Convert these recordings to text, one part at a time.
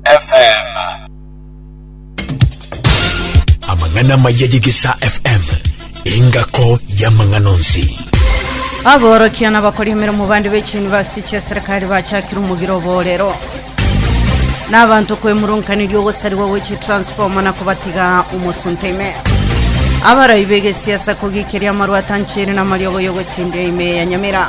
FM. Amang'ana amaya y'Egesaa FM, engako y'amang'ana onsi. Aborokia n'abakori emeremo bande be chiyunivasiti chia serikali bachakire omogiro oborero n'abanto kwemurunkaneria ogosarigwa gwe chitransforma na kobatiga omosunte ime abarai begesiasa kogikeria amarwata nchere na amariogo y'ogotindira ime ya nyamira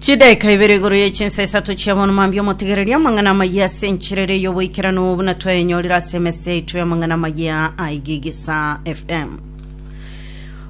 Chidaeka ibere igoro ye chinsa isato chia bono mambia omotegererie amang'ana amayia ase enchera ere y'oboikeranu buna twayenyorire ase emesa yaito y'amang'ana amayia a Igigisa FM.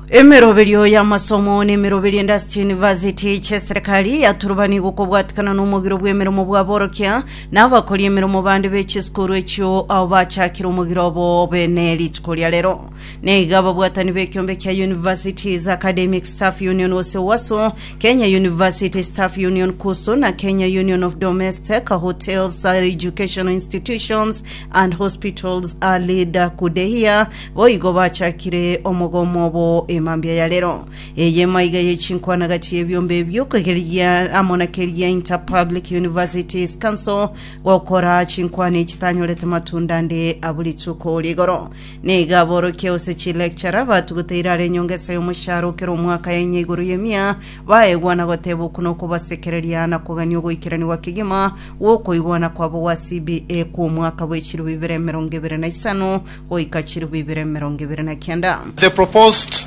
Emeroberio y'amasomo na emeroberio ende ase chiyunivasiti chi'eserekari yaturubani gokobwatikana n'omogiro bw'emeremo bw'aborokia na abakori emeremo bande be chisukuru echio ao bachakire omogiro obo bene rituko ria rero. neiga ababwatani b'ekiombe kia Universities Academic Staff Union gose UASU, Kenya University Staff Union KUSU na Kenya Union of Domestic Hotels Educational Institutions and Hospitals Alida Kudehia boigo bachakire omogomo obo emambia ya rero. Eye emaiga ye chinkwana gati y'ebiombe ebio kegeria amo na keria Interpublic Universities Council gokora chinkwana echi tanyorete matunda ande abu rituko rigoro. Nigo aborokia gose chilecturer batuguta irara enyongesa y'omoshahara o kera omwaka ya inya igoro y'emia baegwa na goteba okuna okobasekereria na kogania ogoikeranigwa kegima gw'okoigwana kwabo gwa CBA kw'omwaka bwe chilifu ibere emerongo ebere na isano goika chilifu ibere emerongo ebere na kenda. The proposed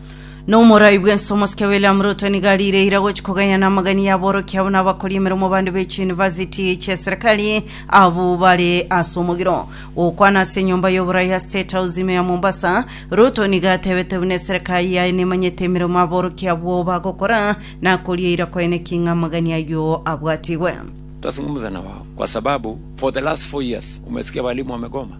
Nomorai bwense omosike William Ruto nigo arireire gochi koganya namagani y'aborokia abwo nabakoria emeremo bande be chiyunivasiti chia serikali abwo bare ase omogiro gokwana ase enyomba y'oborai ya State House ime ya Mombasa. Ruto nigo atebete buna eserikali yaye nemanyete emeremo aborokia abwo bagokora na akorieira koene ki ng'a amagani ayio abwatigwe. Twasung'umza na wao kwa sababu for the last four years umesikia walimu wamegoma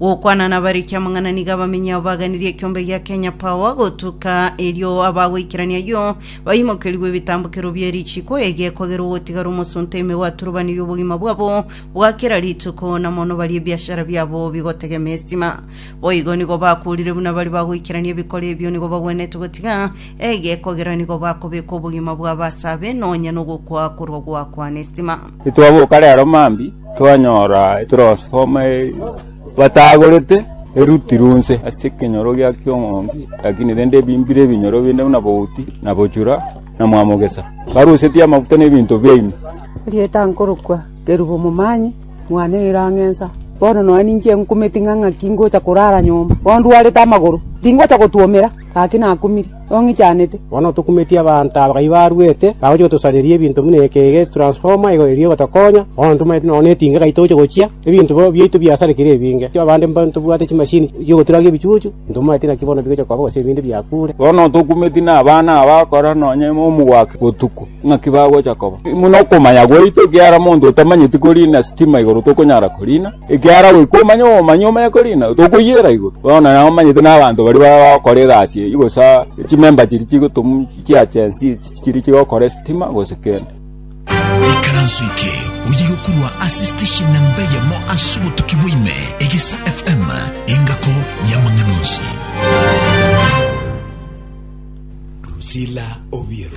Gokwana nabare ekiamang'ana nigo abamenyi abo baganirie ekiombe gia Kenya Power gotuka erio abagoikerania yo baimokerigwe ebitambokero bie richiko ege kogera ogotigara omosunte ime gwaturubanirie obogima bwabo bwa kera rituko na mono bari ebiashara biabo bigotegema estima boigo nigo bakurire buna bari bagoikerania ebikore ebio nigo bagwenete gotiga ege kogera nigo bakobeka obogima bwa basabe nonya nogokwa korwa gwakwana estima Titwaboka rero mambia, twanyora etrosfoma batagorete, erutirwe onse ase ekenyoro gia kiong'ondi, lakini rende ebimbire ebinyoro binde buna bouti, na bochura, na mwamogesa. Barusetie amaguta na ebinto biaino. Rieta nkorokwa Kerubu-Omomanyi, mwana o Irang'ensa. Bono nonya ninche nkumeti ng'a ng'aki ngocha korara nyomba, ondwarete amagoro, tingocha gotwomera, gaki nakumire. ong'ichanete. Bono tokumetie abanto aba kai barwete, bagochia gotosareria ebinto buna eke ege etransformer igo eria egotokonya, bono ntomaete nonya netinga kai toche gochia, ebinto bo- biaito biasarekire ebinge. Abande mba ntobwate chimashini chi'ogoturage ebichuchu, ntomaete naki bono bigochia koba gose ebinde biakure. Bono tokumetie nabana aba bakora nonya ime omogwake botuko, ng'aki bagocha koba. Buna okomanya gwaito, ekiagera monto otamanyeti korina sitima igoro tokonyara korina. Ekiagera goika omanye obomanyi omanye korina tokoyiera igoro. Bono nabo omanyete na abanto baria bagokora egasi eyio gose chimember chiria chigotomu chia Gen Z chiria chigokora esitima gose kende. Ikaranso eke oye gokorwa ase station namba eyemo ase obotuki bwa ime, Egesa FM, engako y'amang'ana onsi. Drusilla Obiero.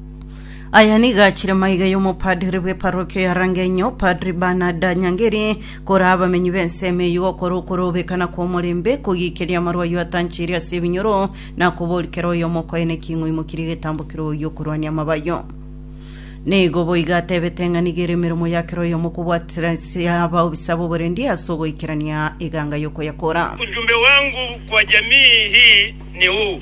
Aya nigo achire maiga y'omopadri bw'eparokio ya Rang'enyo, Padri Bernard Nyangeri, kore abamenyi b'ensemo eyio gokora okorobekana kw'omorembe, kogiikeria amarwa ayio atanchirie ase ebinyoro, na koboria kera oyomo okoyene ki ng'o aimokirie egetambo kere oyio okorwania amaba ayio. Nigo boigo atebete ng'a nigo ere emeremo ya kera oyomo okobwatisia abaobisa b'oborendi ase ogoikerania eganga y'okoyakora. Ujumbe wangu kwa jamii hii ni huu.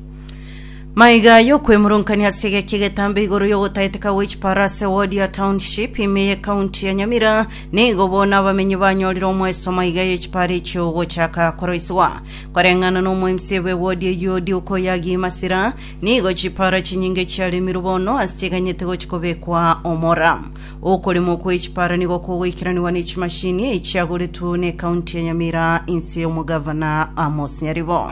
Maiga y'okwemoronkania ase egeki egetambe igoro y'ogotaeteka gwe chiparase ward ya township ime ye county ya Nyamira nigo bono abamenyi banyorire omweso maiga y'echipara echio gochaka koroisigwa koreng'ana n'omoemsie bwe ward eyio Duke Oyagi Masira nigo chipara chinyinge chiaremirwe bono ase chiganyete gochi kobekwa omora okoremwa kw'echipara nigo kogoikeraniwa ne chimashini echiagoretwe ne county ya Nyamira inse y'omogavana Amos Nyaribo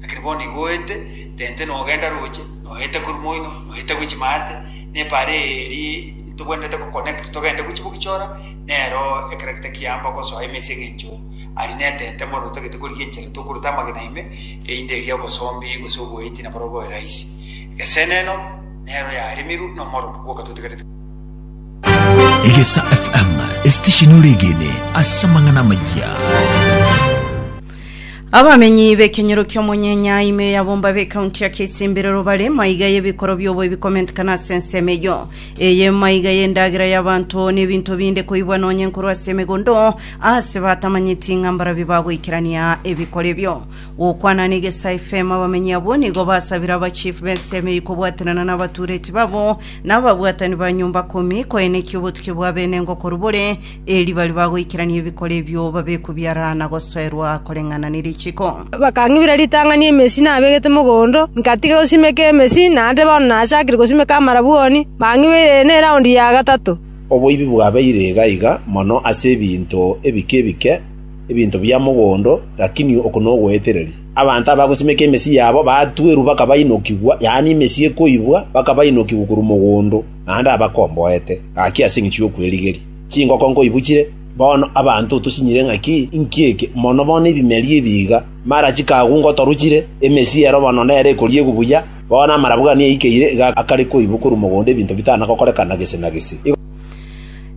Lakini bono igo oete, tente nogenda roche, noete korwa moino, noete gochia maate, n'epara eye eri ntogwenerete goconnect togende gochia gogichora, nero ekero gete kiamba gosoa ime ase eng'encho aria n'etente bono totagete korigia enchera tokorota amagena ime, eyinde eria obosombi gose oboeti na barobwo bobe rahisi. Egeseneno nero yaremirwe nomoromo bwoka totigarete. Egesa FM, esitesheni ore egene ase amang'ana amayia. Abamenyi b'ekenyero ki'omonyenyai ime yabomba b'ekaunti ya Kisimbirero bare maiga y'ebikoro biobo ebikomentikana ase ensemo eyo. Eye maiga y'endagera y'abanto n'ebinto binde koibwa nonye nkorwa ase emegondo ase batamanyeti ng'a mbarabio bagoikerania ebikoro ebio. Gokwana na Egesa FM abamenyi abwo nigo basabire aba chief b'ensemo eyio kobwaterana n'abatureti babo na ababwatani ba nyomba komi koenekia obotukia bwa benengo korwa bore Erio baria bagoikerania ebikoro ebio babekwe biarara na gosoerwa koreng'ana ne richiko. Bakang'ibera ritang'ani emesi nabegete mogondo, nkatiga gosimeka emesi, na ande bono nachakire gosimeka amarabwoni, bang'ibeire eye neraundi ya gatato. Oboibi bwabeire iga iga mono ase ebinto ebike ebike, ebinto bia mogondo, lakini oko nogoetereria. Abanto abagosimeka emesi yabo baatuerwa bakabainokigwa, yaani emesi ekoibwa, bakabainokigwa korwa mogondo. naende abakomboete gaki ase engecho y'okwerigeria. Chingoko nkoibuchire, bono abanto tosinyire ng'aki inki eke, mono bono ebimeria ebi iga, mara chikagu ngotoruchire, emesiero bono nere ekoriegwa buya, bono amarabwani aikeire iga akare koibwa korwa mogondo ebinto bitana gokorekana gese na gese.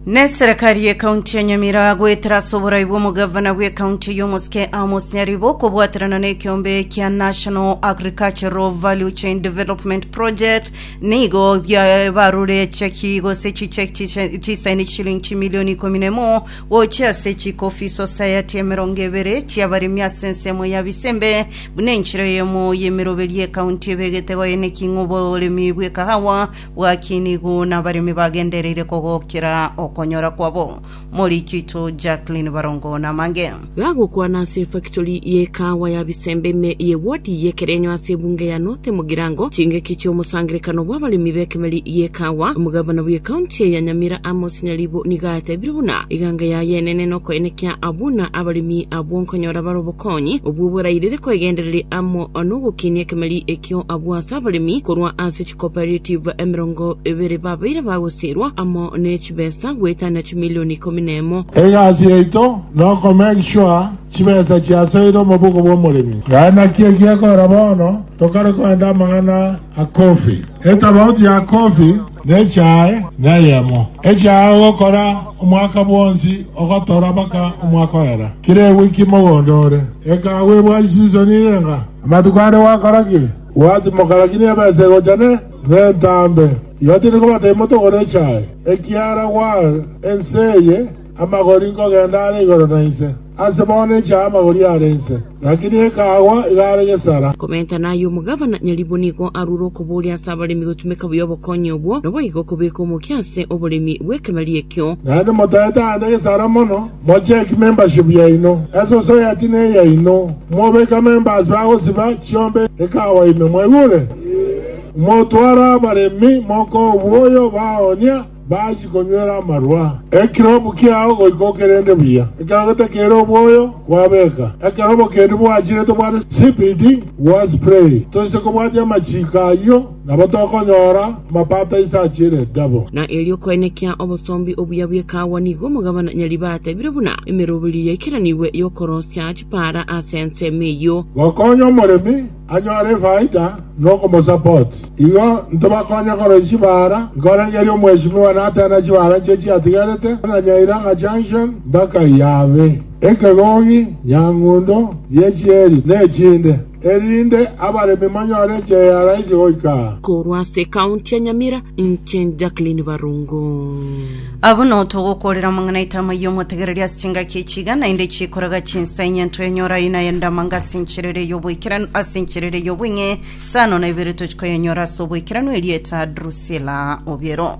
Neserekari y'ekaunti ya Nyamira goetera ase oborai bw'omogavana bw'ekaunti y'omosike Amos Nyaribo kobwaterana n'ekiombe kia National Agricultural Value Chain Development Project nigo bia- barure cheki gose chicheki chiche- chisaini chishilingi chimilioni ikomi na emo gochia ase chikofi society emerongo ebere chi'abaremi ase ensemo ya Bisembe buna enchera eyemo y'emeroberio y'ekaunti ebegete goeneking'o oboremi bw'ekahawa Bw'akinigwa nabaremi bagendereire kogokera okonyora kwabo. Morichito Jacqueline Barongo namange. Gagokwana ase efactory y'ekaawa ya Bisembe ime ye ward y'Ekerenyo ase ebunge ya North Mugirango chingaki chi'omosangerekano bw'abaremi b'ekemeri y'ekaawa, omogavana bw'ecounty eye ya Nyamira Amos Nyaribo nigo atebire buna eganga yaye enene nokoenekia buna abaremi abwo nkonyora bare obokonyi obwo borairire koegendereria amo nogokinia ekemeri ekio abwo ase abaremi korwa ase Cooperative emerongo ebere babeire bagosiirwa amo ne chibesa goetana chimilion ikomi na emo. Egasi yaito noko make sure chibesa chiasoire omobugo bw'omoremi. Naye naki egiekogera bono tokare koenda amang'ana a coffee. Etabauti ya coffee na echae neyemo. Echae ogokora omwaka bwonsi ogotora mpaka omwaka oera. Kera ewiki mogondo ore. Ekahawa ebwasi season ire ng'a. Amatuko ande gwakora ki? Gwachi mogaragie nebesa egochane nentambe, igo tindi kobatebia motogore echae, ekiara gwal ense eye amagori nkogenda are igoro na inse. Ase bono echae amagori are inse, lakini ekagwa iga are gesara. Komentana aye omogavana nyaribwo nigo arure okobooria ase abaremi gotumeka buya obokonyi obwo, noboigo kobeka omokia ase oboremi bw'ekebaria ekio. Naende motaete aande gesara mono. Mocheck membership yaino, esociety neyaino, mobeka members bagosiba chiombe ekawa ime, mwaigure? Motware abaremi moka oboyo baonia bachie konywera amarwa. Ekirobu kiao goika okerende buya, ekero getakere oboyo kwabeka ekerobo kende bwachire tobwate CBD gwa spray, toise kobwatia amachiiko ayio. Nabo tokonyora amapato ise achiire egabo. Na erio koenekia obosombi obuya bw'ekaawa nigo omogabana nyariba atebire buna emeroberio yaikeranigwe y'okorosia chipaara ase ensemo eyio. Gokonya omoremi anyore efaida nokomosupport. Igo ntobakonye koroisia chipaara, nkorengeria omweshimiwa nateena chipaara nchio chiatigarete buna Nyairanga Junction mpaka Iyabe, Ekegogi, Nyang'undo, Riechieri, na echinde. erinde abaremi manyore enchera ya raisi goika aa. Korwa ase ekaunti ya Nyamira, inche Jacqueline Barungu. Abwo no togokorera omong'ainaito amayie omotegereria ase chingaki echi iga naende chikoraga chinsa enye ntwe enyora aye naye ndamanga ase enchera ere y'oboikeranu ase enchera ere y'obweng'e sano na ibere tochikoyenyora ase oboikeranu erieta Drusilla Obiero